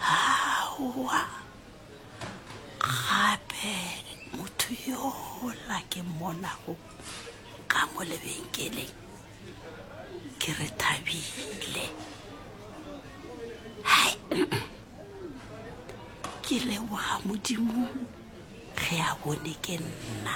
Aowa, gape motho yola ke mmonago ka mo lebenkeleng ke re thabile hai ke leboga modimo ge a bone ke nna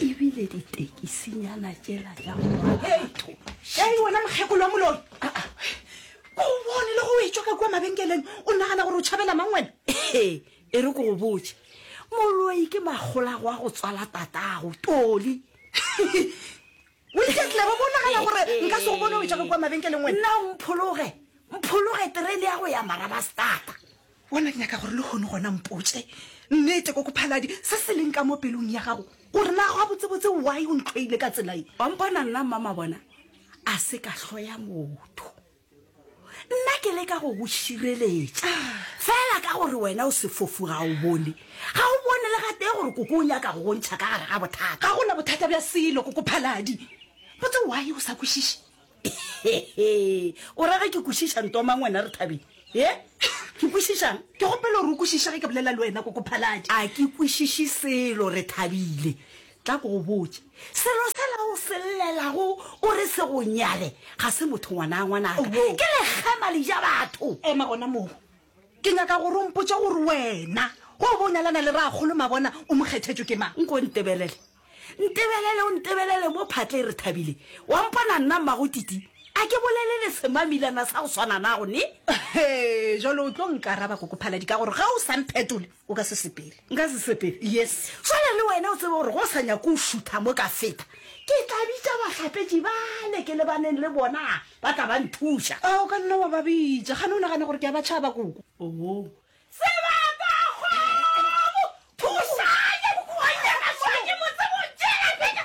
ebile ditekisinyana tšela tša moratho šai wena mokgekolo wa moloi ko o bone le go etswa ka kua mabenkeleng o nagana gore o tšhabela mang wena e re ko go botse moloi ke makgolago a go tswala tatago toli O iketle, ba bo nagana gore nka se go bone o etša ka kua mabenkeleng wena. Nna o mphologe, mphologe terene ya go ya Marabastata. Bona ke nyaka gore le hono gona mpotše nnete kokophaladi se se leng ka mo pelong ya gago gore na gabotsebotse why o ntlhoile ka tsela ye. Wa mpona nna mmamabona a se ka hloya motho. nna ke leka go go šireletša fela ka gore wena o sefofu ga o bone ga o bone le gatee gore koko o nyaka go bontšha ka gare ga bothata ga gona bothata bja selo koko phaladi botse wae o sa kwešiše o rage ke kwešiša ntomang wena re thabeng e ke kwešišang ke gopele gore o kwešišege ke bolela le wena koko phaladi a ke kwešiše selo re thabile Tla ke go botše, selo sela o se llelago o re se go nyale ga se motho ngwanaa ngwanaka, ke lekgema le ja batho. Ema gona moo. Ke nyaka gore o mpotše gore wena ge o bo o nyalana le Rakgolo Mabona o mo kgethetšwe ke mang? Nko ntebelele, ntebelele o ntebelele mo phatle e re thabile. Wa mpona nna mmago Titi? A ke bolele le semamilana sa go swana nago ne? Hee, jwale o tlo nkaraba Koko Phaladi ka gore ge o sa mphetole, O ka se sepele. Nka se sepele, yes. Swana le wena, o tsebe gore go sa nyako o šutha mo ka feta. Ke tla bitša bahlapetši bale ke lebaneng le bona, ba tla ba nthuša. A o ka nna wa ba bitša. Gane o nagane gore ke a ba tšhaba, koko? Oo. Sebapagwebo! Thušang! Ke bokoanyana swa, ke mo tsebe o tšeela phetha.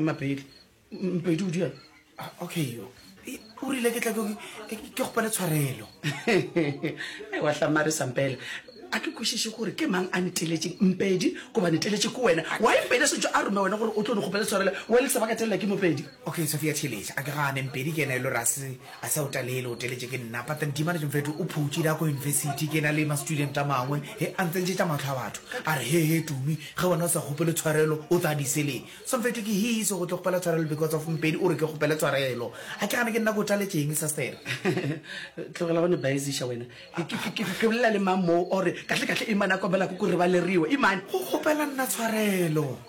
mapedi mpedi o dira ah, okay o rile ke tla ke gopele tshwarelo wa tlamare sampela a ke kwešiše gore ke mang a neteletšeng mpedi goba neteletše ke wena wa mpedi a setse a rome wena gore o tlo ne gopele tshwarelo wa le sebaka telela ke mopedi Okay, Sophia theeletša, a ke gane, Mpedi ke yena e lo re a se, a se a o talele, o teletše ke nna, but then Dimanage mfethu o phutše da ko university, ke na le ma-student a mangwe, he, a ntsentšetša mahlo a batho, a re, he, he, Tumi, ge wena o sa kgopele tshwarelo, o tla diseleng. So mfethu ke hise go tlo kgopela tshwarelo because of Mpedi o re ke kgopele tshwarelo. A ke gane ke nna ke o taletše eng, Sastere? Tlogela go ne baeziša wena. Ke, ke, ke, ke bolela le mang moo, or kahle, kahle Imane a kobela ko ko re ba le riwe, Imane? Go kgopela nna tshwarelo.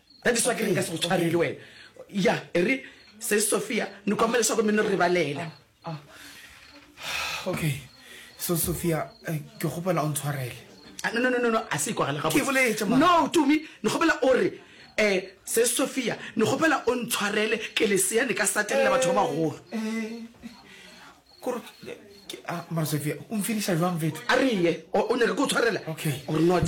That is why ke re nka se go tshwarele wena. Ya, e re se Sophia ni kombela leswaku mi ni rivalela. Ah, ah. Okay. So Sophia, eh, ke kgopela o ntshwarele. Ah, no, no, no, no, no, a se ikwagala gabotse. Ke boletše mara. No, Tumi, ni kgopela o re, eh, se Sophia, ni kgopela o ntshwarele ke lesea ni ka satelela batho ba bagolo. Eh, kore, eh, ke, ah, mara Sophia, o mfiniša jwang vetho? A re ye, o, o nyaka ke o tshwarela? Okay. Or not?